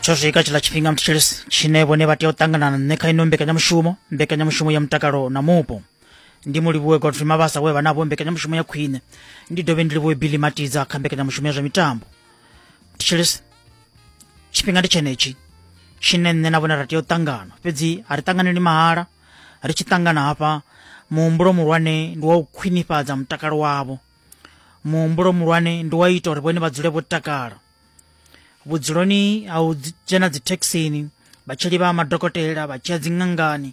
tsho swika tshiḽa tshifhinga mthetshelesi tshine vhone vha tea u ṱangana na nṋe kha ino mbekanyamushumo mbekanyamushumo ya mutakalo na mupo ndi mu livhuwe godfrey mabasa we vha navho mbekanyamushumo ya khwine ndi dovhe ndi livhuwe billy matidza kha mbekanyamushumo ya zwa mitambo mthetshelesi tshifhinga ndi tshenetshi tshine nṋe na vhone ra tea u ṱangana fhedzi a ri ṱanganeli mahala ri tshi ṱangana hafha muhumbulo muhulwane ndi wa u khwinifhadza mutakalo wavho muhumbulo muhulwane ndi wa ita uri vhone vha dzule vho takala vhudzuloni ha u dzhena dzithekhisini vhatsheli vha madokotela vha tshiya dziṅangani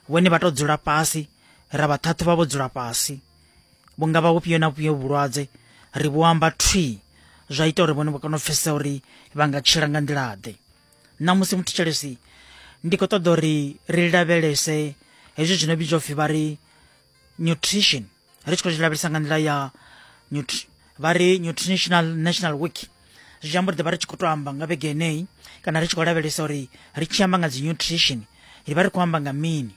vhone vha to dzula fhasi ra vha thathu vha vho dzula fhasi vhunga vha vhufhio na vhufhio vhulwadze ri vho amba thwii zwa ita uri vhone vha kone u pfesesa uri vha nga tshila nga nḓila ḓe na musi muthu tshelesi ndi khou ṱoḓa uri ri lavhelese hezwi zwino vhidzwa upfhi vha ri nutrition ri tshi khou zwi lavhelesa nga nḓila ya vha ri nutritional national week zwi tshi amba uri ḓi vha ri tshi khou to amba nga vhege eneyi kana ri tshi khou lavhelesa uri ri tshi amba nga dzi nutrition ri vha ri khou amba nga mini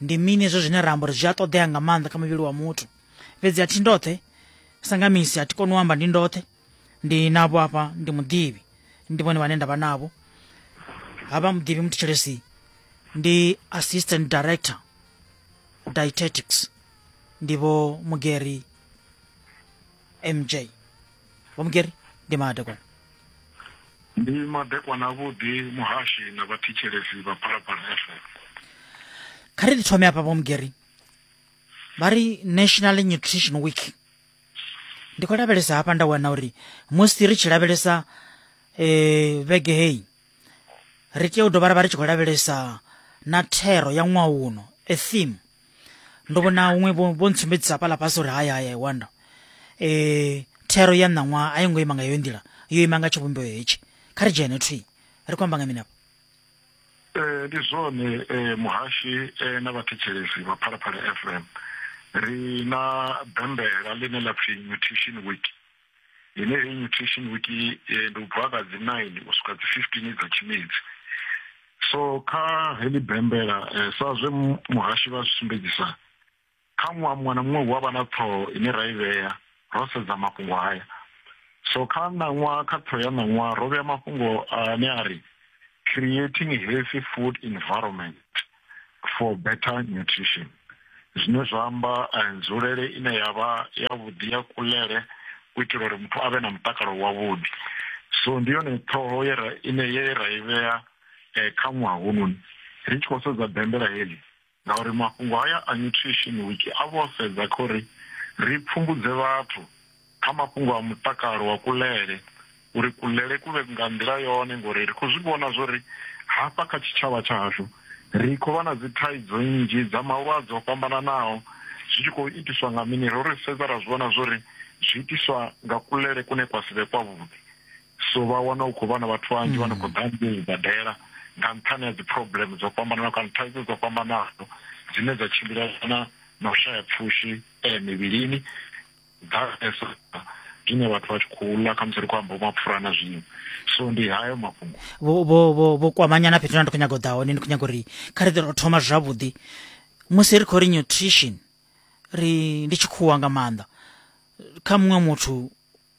ndi mini hezwo zwine ra amba uri zwi a ṱoḓea nga maanḓa kha muvhili wa muthu fhedzi a thi ndoṱhe sa nga misi a thi koni u amba ndi ndoṱhe ndi navo apa ndi muḓivhi ndi vhone vhane nda vha navho havha muḓivhi muthetshelesi ndi assistant director dietetics ndi vho mugeri mj vho mugeri ndi madekwana ndi madekwana avhuḓi muhashi na vhathetshelesi vha phalaphala fm kha ri ri thome afha vho mugeri vha ri national nutrition week ndi khou lavhelesa hafha nda wana uri musi ri tshi lavhelesa um vhege heyi ri tea u dovha ra vha ri tshi khou lavhelesa na thero ya ṅwaha uno a theme ndo vhona huṅwe vho ntsumbedzisa hafhaḽa fhasi uri haya haya wanda um eh, thero ya ṋaṅwaha a yo ngo ima nga heyo nḓila yo ima nga tshivhumbeo hetshi kha ri dzhene thwi ri khou amba nga mini afho Eh, ndi zwone eh, muhashi eh, na vhathetshelesi vha phalaphala fm ri na bembela ḽine ḽa pfi nutrition week ine heyi nutrition week eh, ndi u bva ka dzi 9 u swika dzi 15 dza tshimedzi so kha heḽi bembela eh, sa zwe mu- muhashi vha zwi sumbedzisa Kha ṅwaha muṅwe na muṅwe hu avha na ṱhoho ine ra i vhea ro sedza mafhungo haya. So kha ṋaṅwaha kha ṱhoho ya ṋaṅwaha ro vhea mafhungo ane a ri creating healthy food environment for better nutrition zwine zwa amba eh, nzulele ine ya vha ya vhuḓi ya kulele u itela uri muthu a vhe na mutakalo wavhuḓi so ndi yone ṱhoho ye ra ine ye ra i vhea eh, kha ṅwaha hononi ri tshi khou sedza bembela heḽi Ngauri mafhungo haya a Nutrition Week a vha o sedza kha uri ri pfumbudze vhathu kha mafhungo a mutakalo wa kuḽele, uri kuḽele ku vhe nga nḓila yone ngori ri khou zwi vhona zwa uri hafha kha tshitshavha tsha hashu ri khou vha na dzithaidzo nnzhi dza malwadze o fhambananaho zwi tshi khou itiswa nga mini, ro ri sedza ra zwi vhona zwa uri zwi itiswa nga kuḽele kune kwa si vhe kwavhuḓi. so vha wana hu khou vha na vhathu vhanzhi vha no khou ḓa ngei badela nga nṱhani ha dzi problem dzo fhambanaho kana thaidzo dzo fhambanaho dzine dza tshimbilelana na u shaya pfushi eh, mivhilini ḓalesa zwine vhathu vha tshi khou ḽa khamusi ri khou amba mapfura na zwiṅwe so ndi hayo mafhungo vho vho vho vho kwamanyana fhethu na ndi khou nyaga u ḓa hone ndi khou nyaga uri kha ri ḓe ro thoma zwavhuḓi musi ri khou ri nutrition ri ndi tshikhuwa nga maanḓa kha muṅwe muthu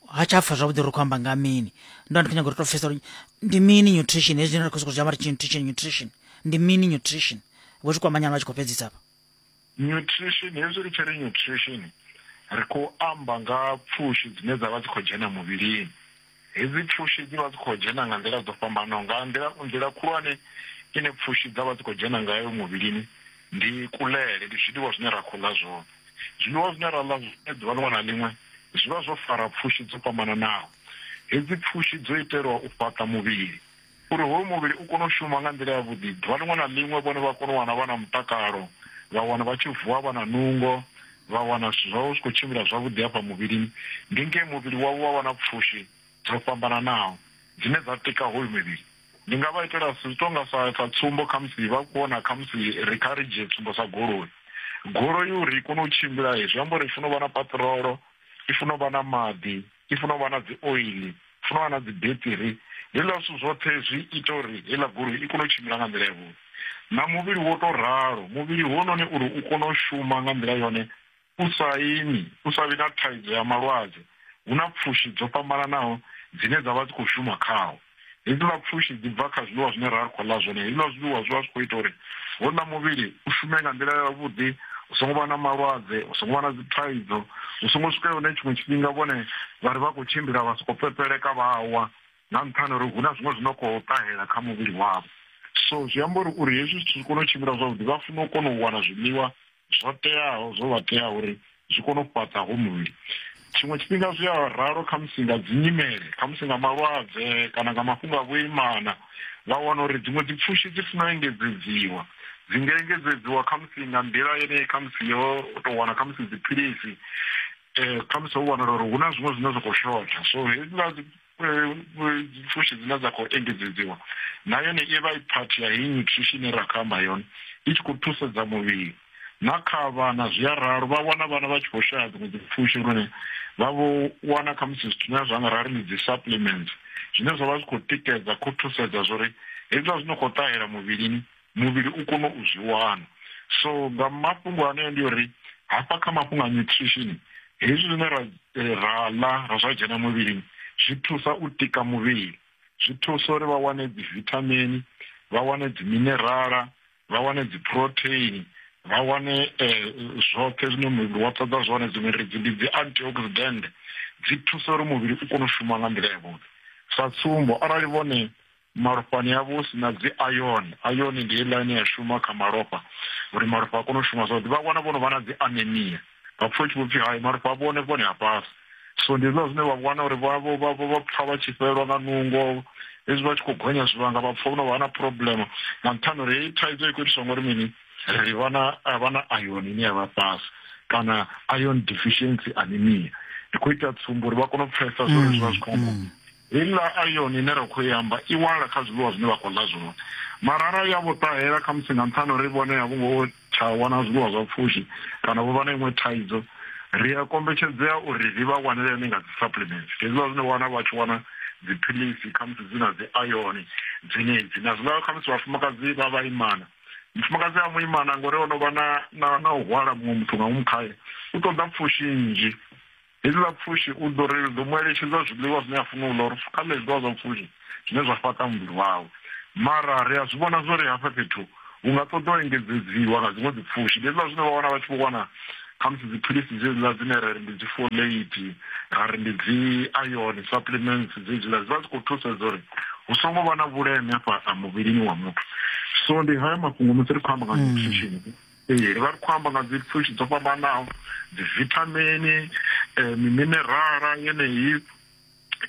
ha tsha pfha zwavhuḓi ri khou amba nga mini ndo ndi khou nyaga uri to pfhesa uri ndi mini nutrition hezwi zwine ra khou sokou zwi amba ri tshi nutrition nutrition ndi mini nutrition vho zwi kwamanyana vha tshi khou fhedzisa afha nutrition hezwi ri tshi ri nutrition ri khou amba nga pfushi dzine dza vha dzi khou dzhena muvhilini hedzi pfushi dzi vha dzi khou dzhena nga nḓila dzo fhambanaho nga nḓila nḓila khulwane ine pfushi dza vha dzi khou dzhena ngayo muvhilini ndi kulele, ndi zwiḽiwa zwine ra khou ḽa zwone. Zwiḽiwa zwine ra ḽa zwone ḓuvha ḽiṅwe na ḽiṅwe zwi vha zwo fara pfushi dzo fhambananaho. Hedzi pfushi dzo itelwa u fhaṱa muvhili uri hoyu muvhili u kone u shuma nga nḓila yavhuḓi ḓuvha ḽiṅwe na ḽiṅwe, vhone vha kone u wana vha na mutakalo, vha wana vha tshi vuwa vha na nungo, vha wana zwithu zwavho zwi khou tshimbila zwavhuḓi hafha muvhilini. Ndi nge muvhili wavho wa vha na pfushi dzo fhambananaho dzine dza tika hoyu mivhili. Ndi nga vha itela zwi tou nga sa sa tsumbo khamusi vha vhona khamusi ri kha ri dzhie tsumbo sa goloi. Goloi uri i kone u tshimbila zwi amba uri i funa u vha na paṱirolo, i funa u vha na maḓi, i funa u vha na dzi oiḽi, i funa u vha na dzi beṱiri. Hezwiḽa zwithu zwoṱhe zwi ita uri heiḽa goloi i kone u tshimbila nga nḓila yavhuḓi. Na muvhili wo tou ralo, muvhili hounoni uri u kone u shuma nga nḓila yone U sa imi, u sa vhi na thaidzo ya malwadze, hu na pfushi dzo fhambananaho dzine dza vha dzi khou shuma khawo. Hedziḽa pfushi dzi bva kha zwiḽiwa zwine ra ri khou ḽa zwone. Hezwiḽa zwiḽiwa zwi vha zwi khou ita uri wouḽa muvhili u shume nga nḓila yavhuḓi, hu songo vha na malwadze, hu songo vha na dzi thaidzo, hu songo swika hune tshiṅwe tshifhinga vhone vha ri vha khou tshimbila vha sokou pepeleka vha wa nga nṱhani uri hu na zwiṅwe zwi no khou ṱahela kha muvhili wavho. So zwi amba uri uri hezwi zwithu zwi kone u tshimbila zwavhuḓi vha funa u kona u wana zwiḽiwa zwo teaho zwo vha tea uri zwi kone u fhaṱa ho muvhili tshiṅwe tshifhinga zwi a ralo khamusi nga dzi nyimele khamusi nga malwadze kana nga mafhungo a vhuimana vha wana uri dziṅwe dzi pfushi dzi funa u engedzedziwa dzi nga engedzedziwa khamusi nga nḓila yeneyi khamusi yo tou wana khamusi dziphilisi um khamusi ho wanala uri hu na zwiṅwe zwine zwa khou shotha so hezwiḽa pfushi dzine dza khou engedzedziwa na yone i vha i phathi ya heyi nyutrishi ine ra khou amba yone i tshi khou thusedza muvhili na kha vhana zwi a ralo vha wana vhana vha tshi khou shaya dziṅwe dzipfushi lune vha vho wana khamusi zwithu zwine zwa nga ra ri ndi dzi supplements zwine zwa vha zwi khou tikedza khou thusedza zwo ri hezwiḽa zwino khou ṱahela muvhilini muvhili u kone u zwi wana so nga mafhungo aneo ndi uri hafha kha mafhungo a nutrition hezwi zwine ra eh, ra ḽa ra zwa dzhena muvhilini zwi thusa u tika muvhili zwi thusa uri vha wane dzi vithamini vha wane dzi minerala vha wane dzi proteini vha wane eh, zwoṱhe zwine muvhili wa ṱoḓa zwone dziṅwe ridzi ndi dzi antioxidant dzi thusa uri muvhili u kone u shuma nga nḓila yavhuḓi sa tsumbo arali vhone malofhani avho hu si na dzi iron iron ndi heiḽa ine ya shuma kha malofha uri malofha a kone u shuma zwavhuḓi vha wana vho no vha na dzi anemia vha pfha u tshi vho pfhi hai malofha avho one vhone ha fhasi so ndi hezwiḽa zwine vha wana uri vha pfha vha tshi fhelelwa nga nungo hezwi vha tshi khou gonya zwivhanga vha pfha vho no vha na problem nga nṱhani uri heyi thaidzo i khou itiswa ngori mini ri vha na iron ine ya vha fhasi kana iron deficiency anemia ndi khou ita tsumbo uri vha kone u pfhesa zwori zwi vha zwi khou mm, mm. Heiḽa iron ine ra khou i amba i wanala kha zwiḽiwa zwine vha khou ḽa zwone. Mara arali ya vho ṱahela, khamusi nga nṱhani ha uri vhone a vho ngo tsha wana zwiḽiwa zwa pfushi kana vho vha na iṅwe thaidzo, ri a kombetshedzea uri ri vha wanele yone nga dzi-supplements. Ndi hezwiḽa zwine wa wana vha tshi wana dziphilisi khamusi dzi na dzi-iron dzenedzi. Na zwiḽa khamusi vhafumakadzi vha vhaimana, mufumakadzi a muimana ngori o no vha na u hwala muṅwe muthu nga ngomu khae, u ṱoḓa pfushi nnzhi Hezwi ḽa pfushi u ḓo ri ḓo mu eletshedza zwiḽiwa zwine a funa u ḽa uri kha ḽe zwiḽiwa zwa pfushi zwine zwa fhaṱa muvhili wawe. Mara ri a zwi vhona zwo ri hafha fhethu hu nga ṱoḓa u engedzedziwa nga dziṅwe dzipfushi. Ndi hezwiḽa zwine vha wana vha tshi vho wana khamusi dziphilisi dzedziḽa dzine ra ri ndi dzi folate, ra ri ndi dzi iron supplements dzedziḽa dzi vha dzi khou thusedza uri hu songo vha na vhuleme afha muvhilini wa muthu. So ndi hayo mafhungo musi ri khou amba nga nutrition. Ee, vha ri khou amba nga dzi pfushi dzo fhambanaho dzi vithamini eh, miminerala yeneyi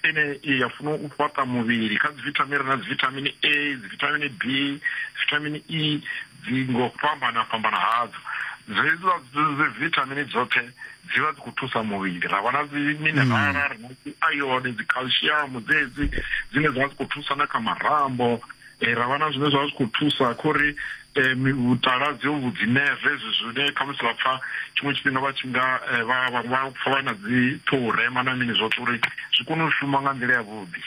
ine ya funa u fhaṱa muvhili kha dzi vithamini na dzi vithamini a dzi vithamini b vithamini e dzi ngo fhambana fhambana hadzo dzedziwa dzi vithamini dzoṱhe dzi vha dzi khou thusa muvhili ra vha na dzi minerala ri na dzi ione dzi calcium dzedzi dzine dza vha dzi khou thusa na kha marambo e, ra vha na zwine zwa zwi khou thusa kho ri e, vhutala dzi ovhu dzi neve ezwi zwine khamusi vha pfa tshiṅwe tshifhinga vha tshi nga e, vha vha vha pfa vha na dzi ṱhoho rema na mini zwoṱhe uri zwi kone u shuma nga nḓila yavhuḓi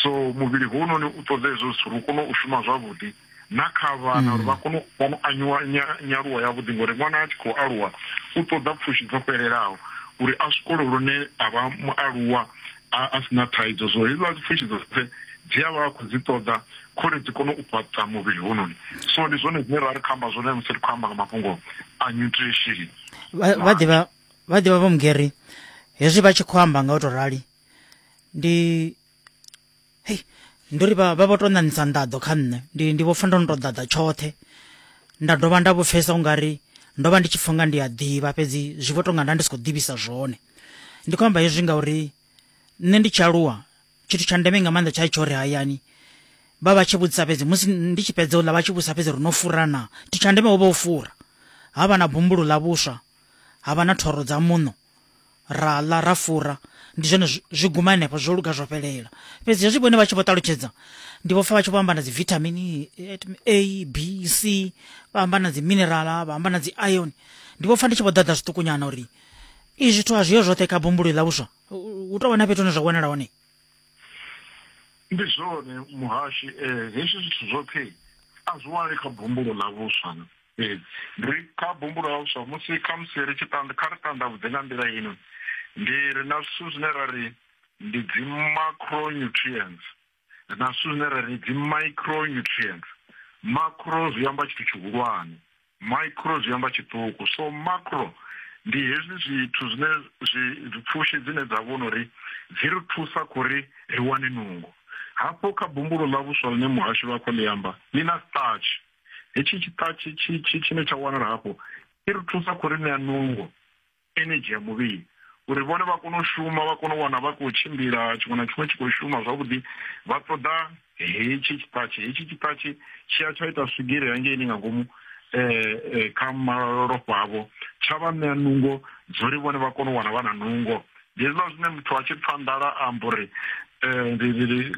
so muvhili hounoni u ṱoḓa hezwo zwithu uri u kone u shuma zwavhuḓi na kha vhana uri vha mm. kone u kone anyuwa nyaluwo yavhuḓi ngori ṅwana a tshi khou aluwa u ṱoḓa pfushi dzo fhelelaho uri a swikole lune a vha mualuwa a a si na thaidzo zwo hezwiḽa pfushi dzoṱhe dzi a vha a khou dzi ṱoḓa khori dzi kone u fhaṱa muvhili hononi so ndi zwone zwine ra ri khou amba zwone musi ri khou amba nga mafhungo a nutrition vha ḓivha vha ḓivha vho mugeri hezwi vha tshi khou amba nga u tou rali ndi hei ndo ri vha vha vho to ṋaṋisa nḓaḓo kha nṋe ndi ndi vho pfa ndo no to ḓaḓa tshoṱhe nda dovha nda vho pfesa u nga ri ndo vha ndi tshi pfa nga ndi a ḓivha fhedzi zwi vho tonga nda ndi si khou ḓivhisa zwone ndi khou amba hezwi ngauri nṋe ndi tshi aluwa tshithu tsha ndeme nga maanḓa tsha tsho ri hayani vha vha tshi vhudzisa fhedzi musi ndi tshi fhedza uḽa vha tshi vhudzisa fhedzi ri no fura na tshithu tsha ndeme ho vha u fura ha vha na bumbulo ḽa vhuswa ha vha na thoro dza muṋo ra ḽa ra fura ndi zwone zwi guma henefho zwo luga zwo fhelela fhedzi hezwi vhone vha tshi vho ṱalutshedza ndi vho pfa vha tshi vho amba na dzi vithamini a b c vha amba na dzi minerala vha amba na dzi iron ndi vho pfa ndi tshi vho ḓaḓa zwiṱukunyana uri i zwithu a zwiyo zwoṱhe kha bumbulo ḽa vhuswa hu tou vha na fhethu hune zwa wanala hone ndi zwone muhashi um hezwi zwithu zwoṱhe a zwi wanali kha bumbulo ḽa vhuswa Fhedzi ri kha bumbula huswa musi khamusi ri tshi tanda, kha ri tandavhudze nga nḓila ino, Ndi ri na zwithu zwine ra ri ndi dzi-macronutrients na zwithu zwine ra ri dzi-micronutrients. Macro zwi amba tshithu tshihulwane, micro zwi amba tshiṱuku. So macro ndi hezwi zwithu zwine zwi pfushi dzine dza vhona uri dzi ri thusa kho ri ri wane nungo. Hafho kha bumbulo ḽa vhuswa ḽine muhasho vha khou ḽi amba, ḽi na starch. hetshi tshiṱatshi tshine tsha wanala hafho i ri thusa khou ri ṋea nungo energy ya muvhili uri vhone vha kone u shuma vha kone u wana vha khou tshimbila tshiṅwe na tshiṅwe tshi khou shuma zwavhuḓi vha ṱoḓa hetshi tshiṱatshi hetshi tshiṱatshi tshi a tsha ita swigiri hangeini nga ngomu um kha malofha avho tsha vha ṋea nungo dzori vhone vha kone u wana vha na nungo Hezwiḽa zwine muthu a tshi pfa nḓala a amba uri um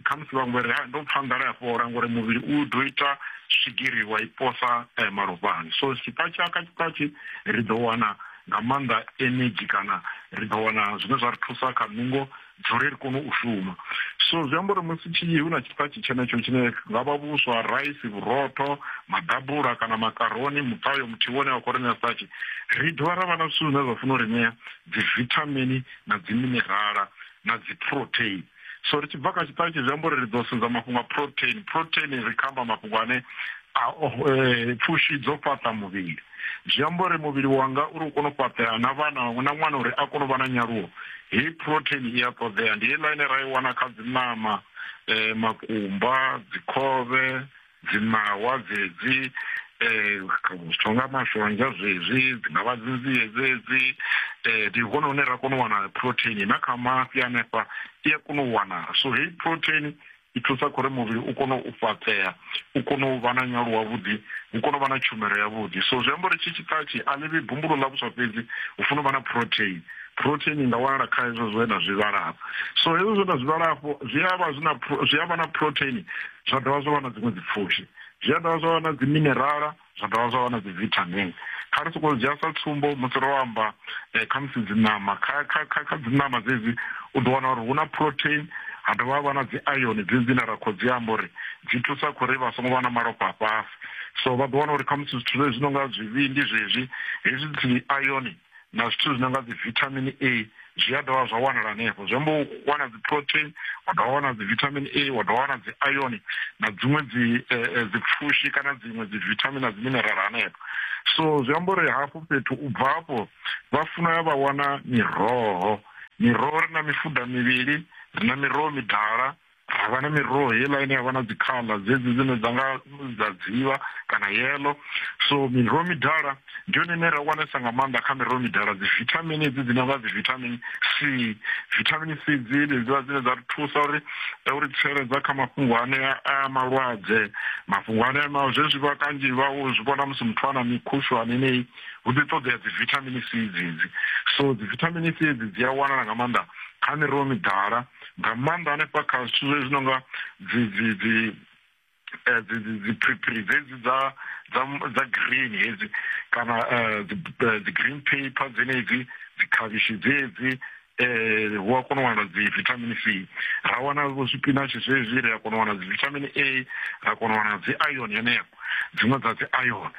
khamusi vhaṅwe vha ri ha ndo pfa nḓala ya fhola ngori muvhili u ḓo ita swigiri wa i posa eh, malofhani so sipatshi aka tshipatshi ri ḓo wana nga maanḓa energy kana ri ḓo wana zwine zwa ri thusa kha nungo dzori ri kone u shuma so zwi amba uri musi tshi hu na tshipatshi tshenetsho tshine nga vha vhuswa raisi vhurotho maḓabula kana makaroni mutayo muthihi wone wa khou ri ṋea sipatshi ri dovha ra vha na zwithu zwine zwa funa u ri ṋea dzivithamini na dziminerala na dziproteini so ri tshi bva kha tshiṱalu tshi zwi amba uri ri ḓo sedza mafhungo a proteini proteini ri kha amba mafhungo ane eh, pfushi dzo fhaṱa muvhili zwi amba uri muvhili wanga uri u kone u fhaṱea na vhana na ṅwana uri a kone u vha na nyaluwo heyi proteini i a ṱoḓea ndi heiḽa ine ra i wana kha dziṋama um makumba dzikhovhe dzimahwa dzedzi um zwithu nga mashonzha zwezwi dzi nga vha dzinzie dzedzi um ndi hone hune ra kona u wana protein na kha mafhi hanefha i a kona u wanala so heyi protein i thusa khori muvhili u kone u fhaṱea u kone u vha na nyalo wavhuḓi u kone u vha na tshumelo yavhuḓi so zwi amba uri tshi tshikhatshi a ḽivhi bumbulo ḽa vhuswa fhedzi u funa u vha na protein protein i nga wanala kha hezwo zwe na zwi vhala hafho so hezwo zwe na zwi vhala hafho zwi avha zwi na zwi avha na protein zwa dovha zwa vha na dziṅwe dzipfushi zwi a dovha zwa vha na dziminerala zwa dovha zwa vha na dzivithamini kha ri sokou dzhia sa tsumbo musi ro amba eh, kha musi dziṋama kha dziṋama dzedzi u ḓo wana uri hu na protein ha dovha ha vha na dzi iron dzedzi dzine ra khou dzi amba uri dzi thusa kho ri vha songo vha na malofha fhasi so vha ḓo wana uri khamusi zwithu zwezwi zwi no nga zwivhindi zwezwi hezwi dzi iron na zwithu zwi no nga dzivitamin a zwi a dovha zwa wanala hanefho zwi amba u wana dzi protein wa dovha wana dzi vitamin a wa dovha wana dzi iron na dziṅwe dzi eh, eh, dzi pfushi kana dziṅwe dzi vitamin na dzi mineral hanefho so zwi amba uri hafho fhethu u bva hafho vha funa ya vha wana miroho miroho ri na mifuda mivhili ri na miroho midala ha vha na miroho heiḽa ine ya vha na dzikhaḽa dzedzi dzine dza nga dza dzivha kana yelo so miroho midala ndi yone ine ra wanesa nga maanḓa kha miroho midala dzi vithamini edzi dzine nga dzi vithamini c vithamini c dzi dzedziḽa dzine dza ri thusa uri eh, uri tsireledza kha mafhungo ane a malwadze mafhungo ane ma zwezwi vha kanzhi vha u zwi vhona musi muthu a na mikhushwane ineyi hu ḓi ṱoḓea dzi vithamini c dzedzi so dzi vithamini c edzi dzi a wanala nga maanḓa kha miroho midala nga maanḓa hanefha kha zwithu zwezwi no nga dzi dzi dzi eh, dziphiriphiri dzedzi dza dza green hedzi kana eh, eh, dzi green paper dzenedzi dzikhavhishi dzedzi eh hu a kona u wana dzi vitamin c ra wana vho zwipinatshi zwezwi ri a kona u wana dzi vitamin a ra kona u wana dzi iron yeneyo dziṅwe dza dzi iron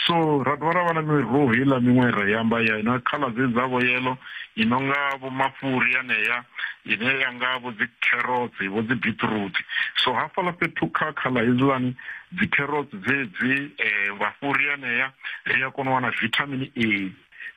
so ra dovha ra vha na miroho heiḽa miṅwe ra yamba ya ina khala dze dzavho yelo i no nga vho mafhuri yaneya ine ya nga vho dzi carrots vho dzi beetroot so hafhaḽa fhethu kha khala hedziḽani dzi carrots dzedzi um eh, mafhuri yaneya ri a kona u wana vitamin a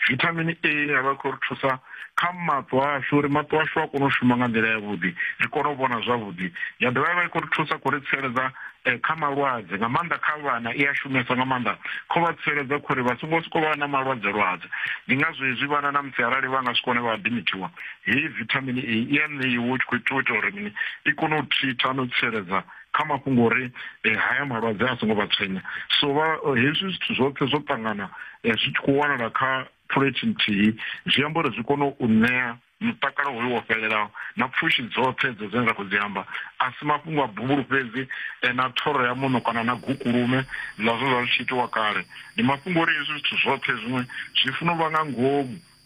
vithamini a ine ya vha khou ri thusa kha maṱo ashu uri maṱo ashu a kone u shuma nga nḓila yavhuḓi ri kone u vhona zwavhuḓi ya dovha ya vha i khou ri thusa khou ri tsireledza eh, kha malwadze nga maanḓa kha vhana i a shumesa nga maanḓa kho vha tsireledza khori vha songo soko vha na malwadze lwadze ndi ngazwo hezwi vhana na musi arali vha nga si kone vha adimithiwa heyi vithamini a i a ṋeiwa u tshi khou itiwa ita uri mini i kone u thitha no tsireledza kha mafhungo uri eh, haya malwadze a songo vha tshwenya so vha eh, hezwi zwithu zwoṱhe zwo ṱangana eh, zwi tshi khou wanala kha phulethi nthihi zwi amba uri zwi kone u ṋea mutakalo hoyo wo fhelelaho na pfushi dzoṱhe dzo dzine ra khou dzi amba a si mafhungo a buvhulu fhedzi na thoro ya muno kana na gukulume ḽa zwo zwa zwi tshi itiwa kale ndi mafhungo uri hezwi zwithu zwoṱhe zwiṅwe zwi funa u vha nga ngomu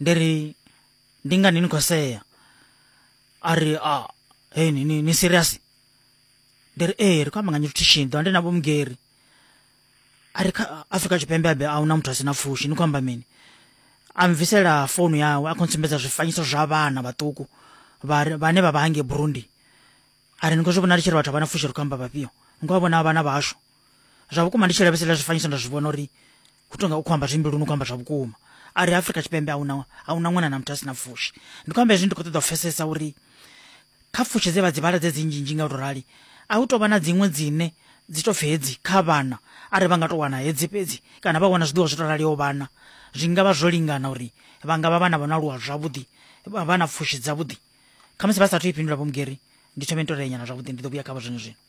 ndi ri ndi ngani ni khou sea a ri a hei ni, ni, ni serious ndi ri ee ri khou amba nga nutrition ḓo ndi na vhomugeri a ri kha afrika tshipembe abe a huna muthu a si na pfushi ni khou amba mini a mvisela founu yawe a khou ntsumbedza zwifanyiso zwa vhana vhaṱuku vhane vha vha hange burundi a ri ni khou zwi vhona ri tshi ri vhathu a vha na pfushi ri khou amba vhafhio ni khou vha vhona vhana vhashu zwa vhukuma ndi tshi lavheselela zwifanyiso nda zwi vhona uri hu tonga u khou amba zwimbi luni u khou amba zwa vhukuma a ri afrika tshipembe ahuna ahuna ṅwana na muthu a si na pfushi ndi khou amba hezwi ndi khou ṱoḓa u pfesesa uri kha pfushi dze vha dzi vhala dze dzi nzhinzhi nga u to rali a hu tovha na dziṅwe dzine dzi to pfi hedzi kha vhana a ri vha nga to wana hedzi fhedzi kana vha wana zwiḓiwa zwi to raliho vhana zwi nga vha zwo lingana uri vha nga vha vhana vha no aluwa zwavhuḓi vha na pfushi dzavhuḓi khamusi vha sathu i fhindula vho mugeri ndi thome ni to renyana zwavhuḓi ndi ḓo vhuya khavho zwino zwino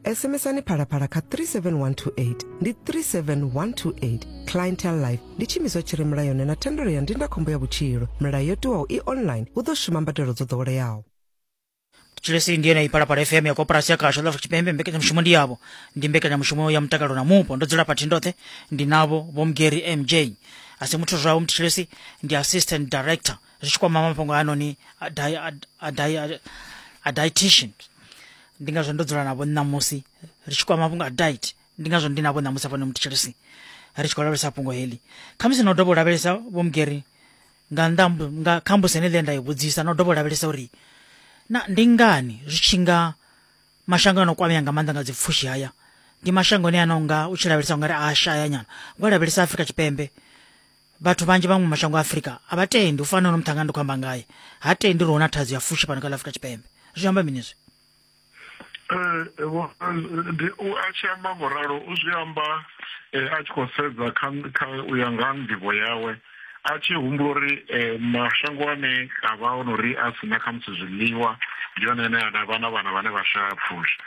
SMSani phalaphala kha 37128 ndi 37128 clientele life ndi tshiimiswa tshi re mulayoni na thendelo ya ndindakhombo ya vhutshilo milayo yo tiwaho i online hu ḓo shuma mbadelo dzo ḓoweleaho chilesi ndiye naipalapala fm ya koporasi ya kasha lafrika tshipembe mbekanyamushumo ndi yavho ndi mbekanyamushumo ya mutakalo na mupo ndo dzula phathi ndoṱhe ndi navho vho mgeri mj asi muthu zwawo mthi chilesi ndi assistant director zwi tshi kwama mafhungo a noni a dietitian ndi ngazwo ndo dzula navho ṋamusi ri tshi kwama mafhungo a diet ndi ngazwo ndi navho ṋamusi afhano mutshilisi ri tshi khou lavhelesa fhungo heḽi khamusi no dovha u lavhelesa vho mugeri nga nnḓa nga kha mbusi ene ḽe nda i vhudzisa no dovha u lavhelesa uri na ndi ngani zwi tshi nga mashango ano kwamea nga maanḓa nga dzipfushi haya ndi mashango ane ano nga u tshi lavhelesa ungari a shaya nyana ngo lavhelesa Afrika Tshipembe vhathu vhanzhi vhaṅwe mashango a afurika a vha tendi u fana no muṱhanga ndi khou amba ngaye ha tendi uri huna thaidzo ya fushi fhano kha ḽa afurika tshipembe zwi amba mini zwi eh, eh, a tshi amba ngo ralo u zwi amba eh, a tshi khou sedza kha u ya nga nḓivho yawe a tshi humbula uri mashango ane a vha ono ri a sina khamusi zwiḽiwa ndi yone ane a vha na vhana vhane vha shaya pfushi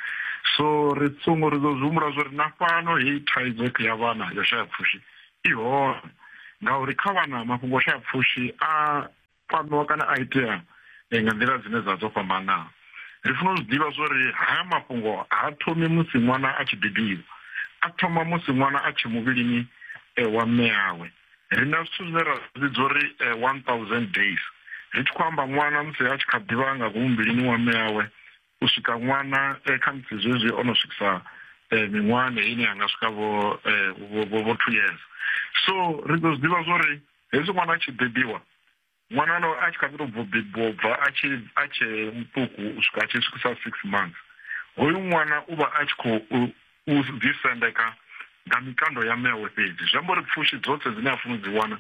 so ri songo ri ḓo zwi humbula zwo ri na fhano heyi thaidzo ya vhana yo shaya pfushi I hone ngauri kha vhana mafhungo o shaya pfushi a kwamiwa kana a itea eh, nga nḓila dzine dza dzo fhambanaho ri funa u zwi ḓivha zwo ri haya mafhungo ha thomi musi ṅwana a tshi bebiwa a thoma musi ṅwana a tshe muvhilini eh, wa mme yawe ri na zwithu zwine ra zwidzo uri eh, one thousand days ri tshi khou amba ṅwana musi a tshi kha ḓivha nga ngomu muvhilini wa mme yawe u swika ṅwana eh, kha musi zwezwi o no swikisa eh, miṅwahani ine yanga swika vho vho two years so ri ḓo zwi ḓivha zwori hezwi ṅwana a tshi bebiwa ṅwana no a tshi kha ḓi to bvo bebiwa bva a tshi a tshe muṱuku u swika a tshi swikisa six months hoyu ṅwana u vha a tshi khou u ḓisendeka nga mikando ya mme awe fhedzi zwi amba uri pfushi dzoṱhe dzine a funa u dzi wana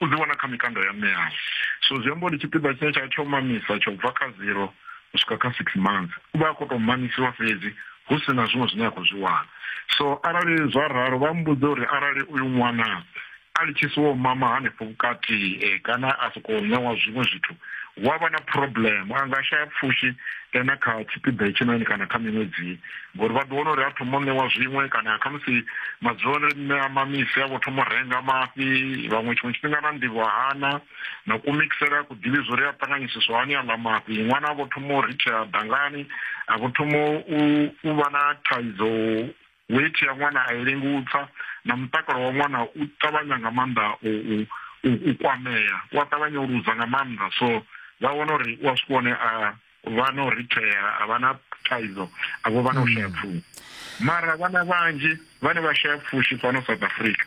u dzi wana kha mikando ya mme awe so zwi amba uri tshipiḓa tshine tsha tsho mamisa tsho bva kha zero u swika kha six months u vha a khou tou mamisiwa fhedzi hu si na zwiṅwe zwine a khou zwi wana so arali zwa ralo vha mbudze uri arali uyu ṅwana a litshisiwa u mama hanefho vhukati eh, kana a sokou ṋewa zwiṅwe zwithu hu a vha na problem a nga shaya pfushi eh, na kha tshipiḓa hetshinoni kana kha miṅwedzi ngori vha ḓo wana uri a thoma u ṋewa zwiṅwe kana khamusi madzuloni mme a mamisi a vho thoma u renga mafhi vhaṅwe tshiṅwe tshifhinga na nḓivho hana na kumixela ku ḓivhi zwo ri a ṱanganyisiswa hani aḽa mafhi ṅwana a vho thoma u ritshea dangani a vho thoma u vha na thaidzo Weithi ya ṅwana a i lengi u tsa na mutakalo wa ṅwana u ṱavhanya nga maanḓa u u kwamea u a ṱavhanya u luza nga maanḓa so vha wana uri u a swika hone a vha na u rithea a vha na thaidzo a vho vha na u shaya mm. pfushi mara vhana vhanzhi vhane vha shaya pfushi fhano south africa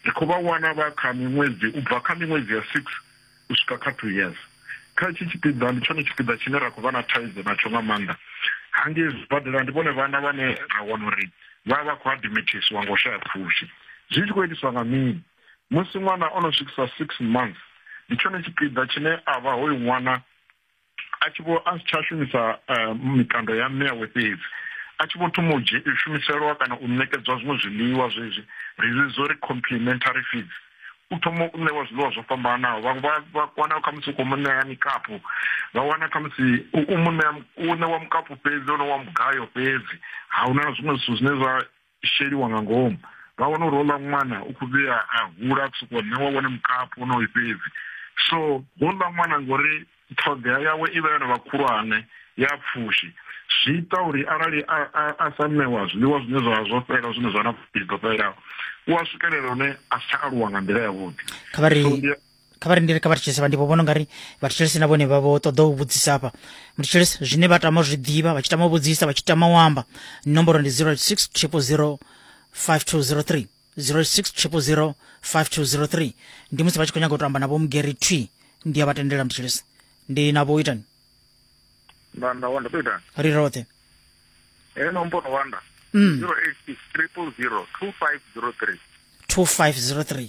ri khou vha wana vha kha miṅwedzi u bva kha miṅwedzi ya six u swika kha two years. Kha hetshi tshipiḓa ndi tshone tshipiḓa tshine ra khou vha na thaidzo natsho nga maanḓa. Hangei zwibadela ndi vhone vhana vhane ra wana uri vha vha vha khou adimithiswa nga u shaya pfushi. Zwi tshi khou itiswa nga mini? Musi ṅwana o no swikisa six months, ndi tshone tshipiḓa tshine a vha hoyu ṅwana a tshi vho a si tsha shumisa eh, mikando ya mme yawe fhedzi a tshi vho thoma u shumiselwa kana u ṋekedzwa zwiṅwe zwiḽiwa zwezwi ri zwi zwo ri complementary feeds u thoma u ṋewa zwiḽiwa zwo fhambanaho vhaṅwe vha vha wana khamusi u khou mu ṋea mikapu vha wana khamusi u mu ṋea u ṋewa mukapu fhedzi ono wa mugayo fhedzi ha huna na zwiṅwe zwithu zwine zwa sheliwa nga ngomu vha wana uri hola ṅwana u khou vhuya a hula ku sokou ṋewa wone mukapu onoyu fhedzi so hola ṅwana ngori ṱhoḓea yawe i vha yo no vha khulwane ya pfushi zwi ita uri arali a sa ṋewa zwiḽiwa zwine zwa zwo fhela zwine zwa na pfushi dzo fhelelaho u a swikelela hune a si tsha aluwa nga nḓila yavhuḓi kha vha rindele kha vha thetshelese vha ndi vhona ungari vha thetshelese na vhone vha vho ṱoḓa u vhudzisa hafha muthetshelese zwine vha tama zwi ḓivha vha tshi tama u vhudzisa vha tshi tama u amba nomboro ndi 086 000 5203 086 5203 ndi musi vha tshi khou nyaga u to amba na vho mugeri twi ndi a vha tendela muthetshelese ndi na vho itani ndanda wanda to itani ri roṱhe e nomboro wanda 086 000 2503 2503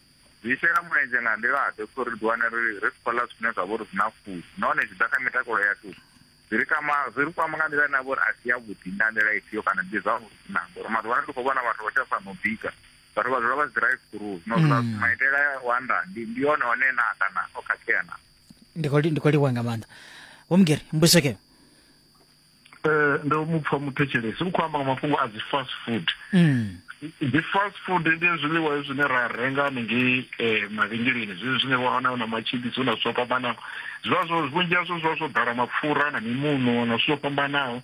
Zwi shela mulenzhe nga nḓila-ḓe kha uri ri ḓiwane ri ri si khou ḽa zwithu zwine zwa vha uri zwi na pfushi nahone zwi ḓa kha mitakalo yashu zwi ri kwama zwi ri kwama nga nḓila ine ya vha uri a si yavhuḓi nga nḓila ifhio kana ndi zwavhuḓi na ngori maḓuvha ano ndi khou vhona vhathu vha tsha sa no bika vhathu vha dzula vha si drive through zwino zwi mm. maitele wa nda ndi ndi yone one na kana o khakhea na ndi khou livhuwa nga maanḓa vho mugeri mbudziso keo eh ndo mu pfha muthetshelesi u khou amba nga mafhungo a dzi fast food mm. dzi fast food ndi zwiḽiwa zwine ra renga hanengei eh, mavhengeleni zwezwi zwine wa wana na matshibisi na zwithu zwo fhambanaho zwivha zwo vhunzhi hazwo zwivha zwo ḓala mapfura na mimuno na zwithu zwo fhambanaho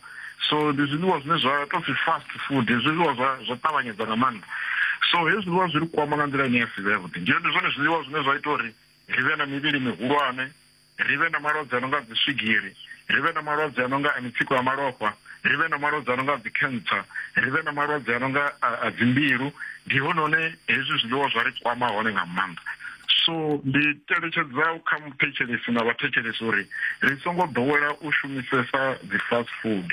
so ndi zwiḽiwa zwine zwa tou pfi fast food zwiḽiwa zwa zwa ṱavhanyedza nga maanḓa so hezwi zwiḽiwa zwi ri kwama nga nḓila ine ya si vhe yavhuḓi ndi zwone zwiḽiwa zwine zwa ita uri ri vhe na mivhili mihulwane ri vhe na malwadze a no nga dziswigiri ri vhe na malwadze a no nga a mitsiko ya malofha ri vhe na malwadze a no nga a dzikhentsa ri vhe na malwadze a no nga a dzimbilu ndi hone hone hezwi zwiḽiwa zwa ri kwama hone nga maanḓa so ndi teletshedza kha muthetshelesi na vhathetshelesi uri ri songo ḓowela u shumisesa dzi fast food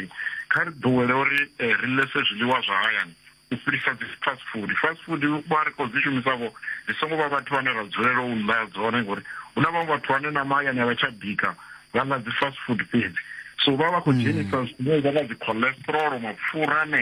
kha ri ḓowele uri eh, ri lese zwiḽiwa zwa hayani u fhirisa dzi fast food fast food vha ri khou dzi shumisa vho dzi songo vha vhathu vhane ra dzulela u ḽa dzone ngori hu na vhaṅwe vhathu vhane na mahayani a vha tsha bika vha ḽa dzi fast food fhedzi so vha vha khou dzhenisa zwine vha nga dzi cholesterol mapfura ane